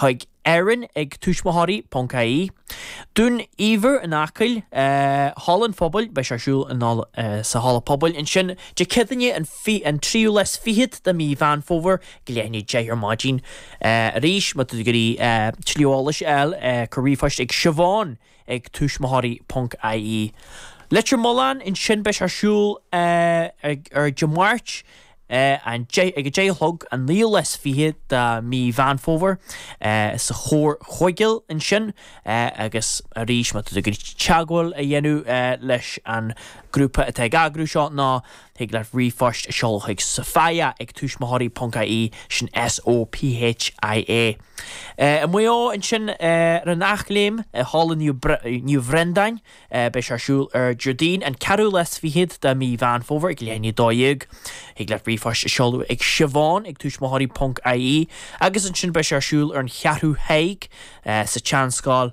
chuig Erin ag tuismitheoirí.ie, Dún Ibhir in Acaill, Halla an Phobail, beidh sé ar siúl sa Halla Pobail ansin Dé Céadaoine an tríú lá is fichead de mhí Mheán Fómhair ag leath i ndiaidh a 10 ar maidin. Arís, má tá tú ag iarraidh tuilleadh eolais a fháil, cuir ríomhphost chuig Siobhán ag tuismitheoirí ponc ie. Leitir Mealláin ansin beidh sé ar siúl ar Dé Máirt an ag a deich a chlog an 29ú lá de mí Mheán Fómhair sa Chomhar Chuigéal ansin agus arís má tá tú ag iarraidh teagmháil a dhéanamh leis an grúpa atá ag eagrú seo ná Thig leat ríomhphost a sheoladh chuig Sophia ag tuismitheoirí ponc IE, sin S-o-p-h-i-a. I Maigh Eo ansin ar an Eachléim i Halla Naomh Bhreandáin beidh sé ar siúl ar Déardaoin an ceathrú lá is fichead de mí Mheán Fómhair ag leath i ndiaidh a dó dhéag. Thig leat ríomhphost a sheoladh ag siobhán ag tuismitheoirí ponc IE agus ansin beidh sé ar siúl ar an Cheathrú Thaidhg sa tSeanscoil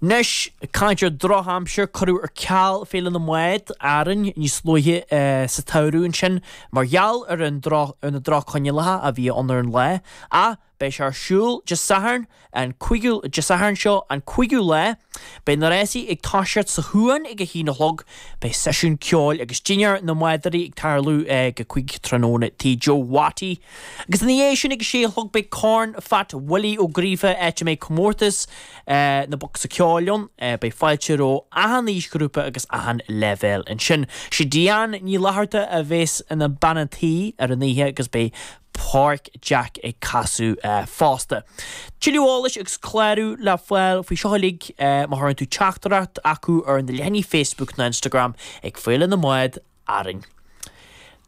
Anois, caint ar dhrochaimsir, cuireadh ar ceal Féile na mBád, Árainn, níos luaithe sa tsamhradh ansin mar gheall ar na droch-choinníollacha a bhí ann ar an lá, ach beidh sé ar siúl Dé Sathairn an, Dé Sathairn seo an 5ú lá. Beidh na rásaí ag toiseacht sa chuan ag a haon a chlog. Beidh seisiún ceoil agus dinnéar na mbádóirí ag tarlú ag a cuig tráthnóna Tigh Joe Watty. Agus ina dhiaidh sin ag a sé a chlog beidh Corn Phat Willie Ó Gríofa áit a mbeidh comórtas na bocsa ceoil ann. Beidh fáilte roimh achan aoisghrúpa agus achan leibhéal ansin. Sé Diane Ní Fhlatharta a bhéas ina bean an tí ar an oíche agus beidh Pádraig Jack ag casadh fosta. Tuilleadh eolais agus clárú le fáil faoi seo uilig má chuireann tú teachtaireacht chucu ar na leathanaigh Facebook nó Instagram ag Féile na mBád. Árainn.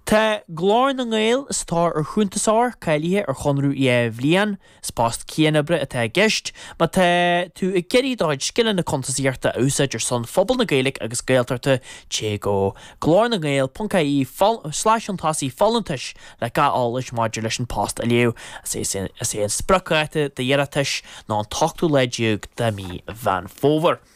Tá Glór na nGael sa tóir ar chuntasóir cáilithe ar chonradh dhá bhliain. Is post cianoibre atá i gceist. Má tá tú ag iarraidh do chuid scileanna cuntasaíochta a úsáid ar son phobal na Gaeilge agus Gaeltachta téigh go, glornagael.ie/chuntasaigh-folúntais le gach eolas maidir leis an bpost a léamh. Is é an spriocdháta d'iarratais ná an t-ochtú lá déag de mhí Mheán Fómhair.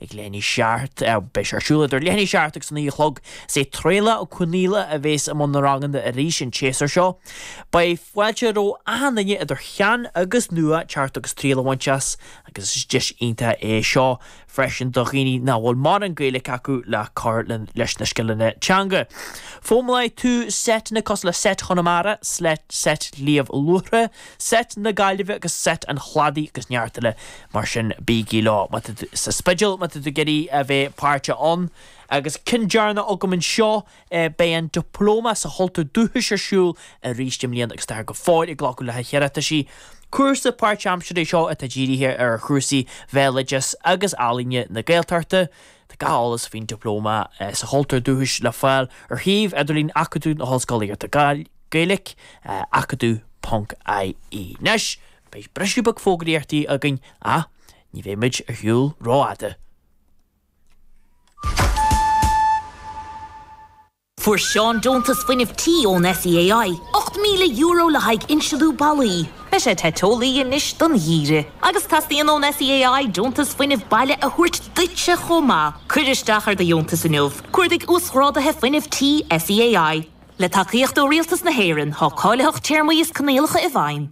Ag leath i ndiaidh a seacht, beidh sé ar siúl idir leath i ndiaidh a seacht agus a naoi a chlog. Is é Traolach Ó Conaola a bhéas i mbun na ranganna arís an tséasúr seo. Beidh fáilte roimh achan duine, idir shean agus nua, teacht agus triail a bhaint as agus is deis iontach é seo freisin do dhaoine nach bhfuil mórán Gaeilic acu le cur leis na scileanna teanga. Foghlaimeoidh tú seiteanna cosúil le seit Chonamara, seit Shliabh Luachra, Set na Gaillimhe agus Set an Chladaigh agus neart eile mar sin. Bígí leo má tá tú sa Spidéal, má tá tú ag iarraidh a bheith páirteach ann. Agus ceann deireanach agam anseo, beidh an Dioplóma sa Chultúr Dúchais ar siúl arís i mbliana agus táthar go fóill ag glacadh le hiarrataisí. Cúrsa páirt-aimseartha é seo atá dírithe ar chúrsaí Bhéaloidis agus Ealaíne na Gaeltachta. Tá gach eolas faoin Dioplóma sa Chultúr Dúchais le fáil ar shuíomh idirlín Acadamh na hOllscolaíochta Gael. Gaeilge, Acadamh ponc IE. Anois, beidh briseadh beag fógraíochtaí againn ach ní bheidh muid ar shiúl rófhada. Fuair Seán deontas fuinnimh tí ón SEAI, €8,000 le haghaidh insliú ballaí. Beidh sé te teolaí anois don gheimhreadh. Agus teastaíonn ón SEAI deontas fuinnimh baile a thabhairt duitse chomh maith. Cuir isteach ar do dheontas inniu. Cuardaigh Uasghráduithe Fuinnimh Tí SEAI. Le tacaíocht ó Rialtas na hÉireann, tá cáilitheacht téarmaí is coinníollacha i bhfeidhm.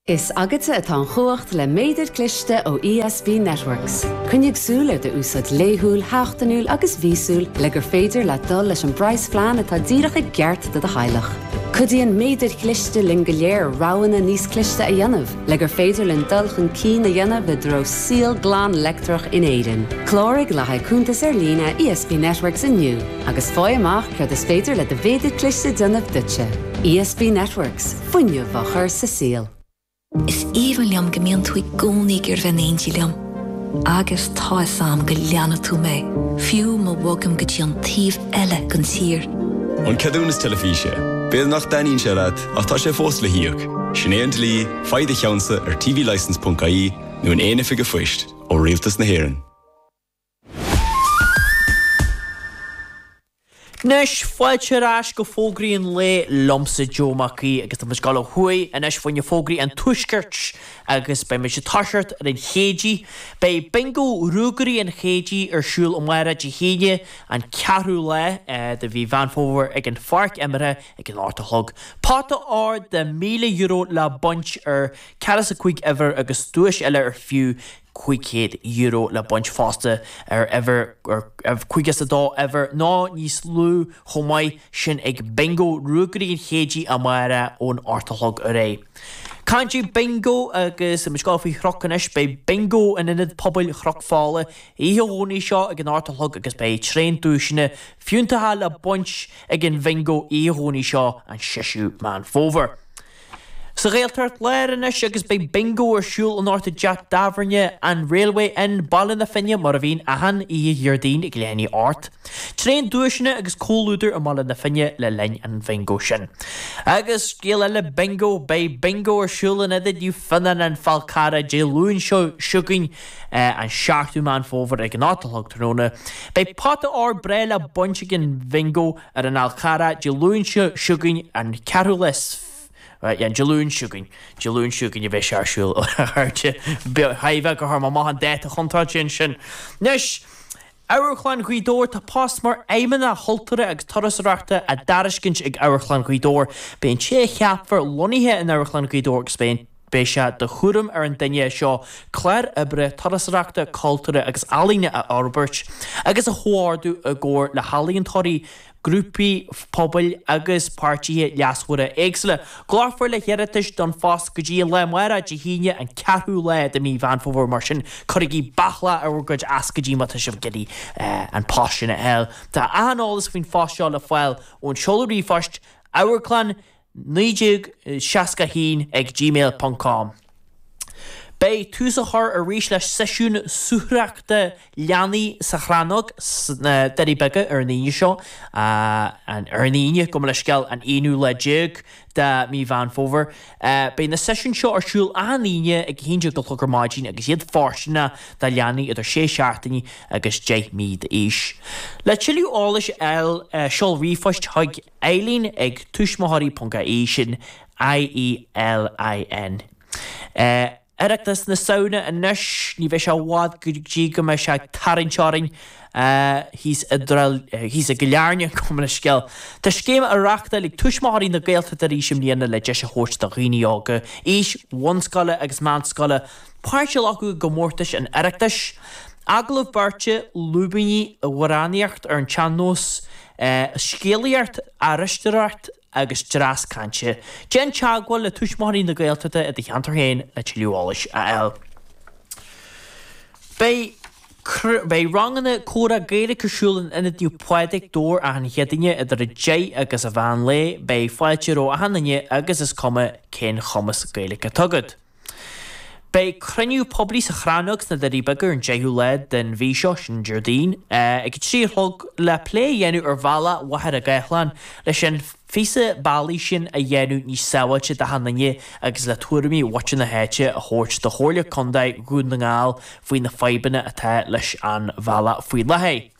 Is agatsa atá an chumhacht le méadar cliste ó ESB Networks. Coinnigh súil ar do úsáid laethúil, sheachtainiúil agus mhíosúil le gur féidir leat dul leis an bpraghasphlean atá díreach i gceart do do theaghlach. Cuidíonn méadair chliste linn go léir roghanna níos cliste a dhéanamh. Le gur féidir linn dul chun cinn a dhéanamh i dtreo saol glan leictreach in Éirinn, cláraigh le haghaidh cuntas ar líne ESB Networks inniu agus faigh amach céard is féidir le do mhéadar cliste a dhéanamh duitse. ESB Networks, fuinneamh á chur sa saol. Is aoibhinn liom go mbíonn tú i gcónaí ag iarraidh bheith in éindí liom. Agus tá fhios a'm go leanfaidh tú mé, fiú má bhogaim go dtí an taobh eile den tír. An ceadúnas teilifíse. B'fhéidir nach dtaitníonn sé leat. Ach tá sé fós le híoc. Sin é an dlí, faigh do cheannsa ar tvlicence ponc ie nó in aon oifig a'phoist, ó Rialtas na hÉireann. Anois, fáilte ar ais go Fógraí an Lae liomsa, Joe Mac Aoidh, agus tá muid ag dul ó thuaidh anois fá choinne fógraí an tuaiscirt agus beidh muid ag toiseacht ar an Chéidigh. Beidh Bingo Ruagairí an Chéididh ar siúl amárach Dé hAoine, an 4ú lá de mhí Mheán Fómhair ag an pháirc imeartha ag an ocht a chlog pota óir de €1,000 le baint ar ceathracha is a cúig uimhir agus duais eile ar fiú €500 le baint fosta ar uimhir ar caoga is a dó uimhir nó níos lú chomh maith sin ag Bingo Ruagairí an Chéididh amárach ón ocht a chlog ar é caint Bingo agus an scéal faoi Chnoc anois beidh Bingo in Ionad Pobail Chnoc Fola oíche Dhomhnaigh seo ag an ocht a chlog agus beidh tréan duaiseanna fiúntacha le baint ag an bhingo oíche Dhomhnaigh seo an 6ú Meán Fómhair. Sa Ghaeltacht Láir anois agus beidh bingo ar siúl anocht i dteach tábhairne an Railway Inn, Baile na Finne mar a bhíonn achan oíche Dhéardaoin ag leath i ndiaidh a hocht. Tréan duaiseanna agus comhluadar i mBaile na Finne le linn an bhingo sin. Agus scéal eile bingo, beidh bingo ar siúl in Ionad Naomh Fionnán, An Fál Carrach, Dé Luain seo chugainn. an 7ú Meán Fómhair ag a hocht a chlog tráthnóna. Beidh pota óir breá le baint ag an Bhingo ar an Fhál Charrach Dé Luain seo chugainn, an 4ú lá, Dé Luain seo chugainn, Dé Luain seo chugainn a bheidh sé ar siúl, ar airde. Tá mé ag tabhairt amach an dáta chontráilte ansin. Anois, Amharclann Ghaoth Dobhair Tá post mar Fheidhmeannach Chultúrtha agus Turasóireachta á dtairiscint ag Amharclann Ghaoth Dobhair. Beidh an té a cheapfar lonnaithe in Amharclann Ghaoth Dobhair agus beidh sé de chúram ar an duine seo clár oibre turasóireachta, cultúrtha agus ealaíne a fhorbairt agus a chomhordú i gcomhar le healaíontóirí, grúpaí pobail agus páirtithe leasmhara éagsúla. Glacfar le hiarratais don phost go dtí an lá amárach Dé hAoine, an ceathrú lá de mhí Mheán Fómhair, mar sin cuirigí bealadh faoi bhur gcuid ioscaidí má tá sibh ag iarraidh an post sin a fháil. Tá achan eolas faoin phost seo le fáil ón seoladh ríomhphoist, amharclann 1961 ag gmail ponc com Beidh tús á chur arís le seisiún suathaireachta leanaí sa Chrannóg sna Doirí Beaga ar an Aoine seo, ar an Aoine, gabh mo leithscéal, an aonú lá déag de mhí Mheán Fómhair. Beidh na seisiúin seo ar siúl achan Aoine ag a haon déag a chlog ar maidin agus iad fóirsteanach do leanaí idir sé seachtaine agus deich mí d'aois. Le tuilleadh eolais a fháil, seol ríomhphost chuig. Elaine ag tuismitheoirí.ie sin ELAINE. Oireachtas na Samhna anois, ní bheidh sé i bhfad go dtí go mbeidh sé ag tarraingt orainn thíos i gCill Airne, gabh mo leithscéal. Tá scéim á reáchtáil ag Tuismitheoirí na Gaeltachta arís i mbliana le deis a thabhairt do dhaoine óga, aois bhunscoile agus meánscoile, páirt a ghlacadh i gcomórtais an Oireachtais, agallamh beirte, lúibíní, amhránaíocht ar an tsean-nós. Scéalaíocht, aisteoireacht agus dreas cainte. Déan teagmháil le Tuismitheoirí na Gaeltachta i do cheantar féin le tuilleadh eolais a fháil. Beidh ranganna comhrá Gaeilge ar siúl in Ionad Naomh Pádraig, Dobhar achan Chéadaoine idir 10 agus an mheán lae. Beidh fáilte roimh achan duine agus is cuma cén chumas Gaeilge atá agat. Beidh cruinniú poiblí sa Chrannóg sna Doirí Beaga ar an 10ú lá den mhí seo, sin an Déardaoin, ag a trí a chlog le plé a dhéanamh ar bhealach Mhachaire Gathlán leis an phíosa bealaigh sin a dhéanamh níos sábháilte d'achan duine agus le tuairimí mhuintir na háite a thabhairt do Chomhairle Contae Dhún na nGall faoi na fadhbanna atá leis an bhealach faoi láthair.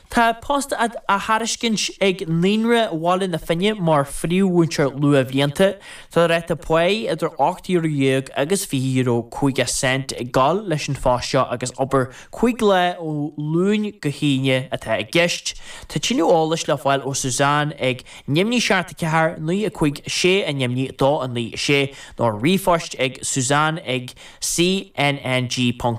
Tá post á thairiscint ag naíonra Bhaile na Finne mar phríomh-mhúinteoir luathbhlianta. Tá ráta paí idir ocht euro dhéag agus fiche euro cúig cent ag dul leis an phost seo agus obair cúig lá ó Luan go hAoine atá i gceist. Tá tuilleadh eolais le fáil ó Suzanne ag, neamhní seacht a ceathair naoi a cúig a sé a neamhní a dó a naoi a sé, nó ríomhphost ag suzanne ag cnng.ie.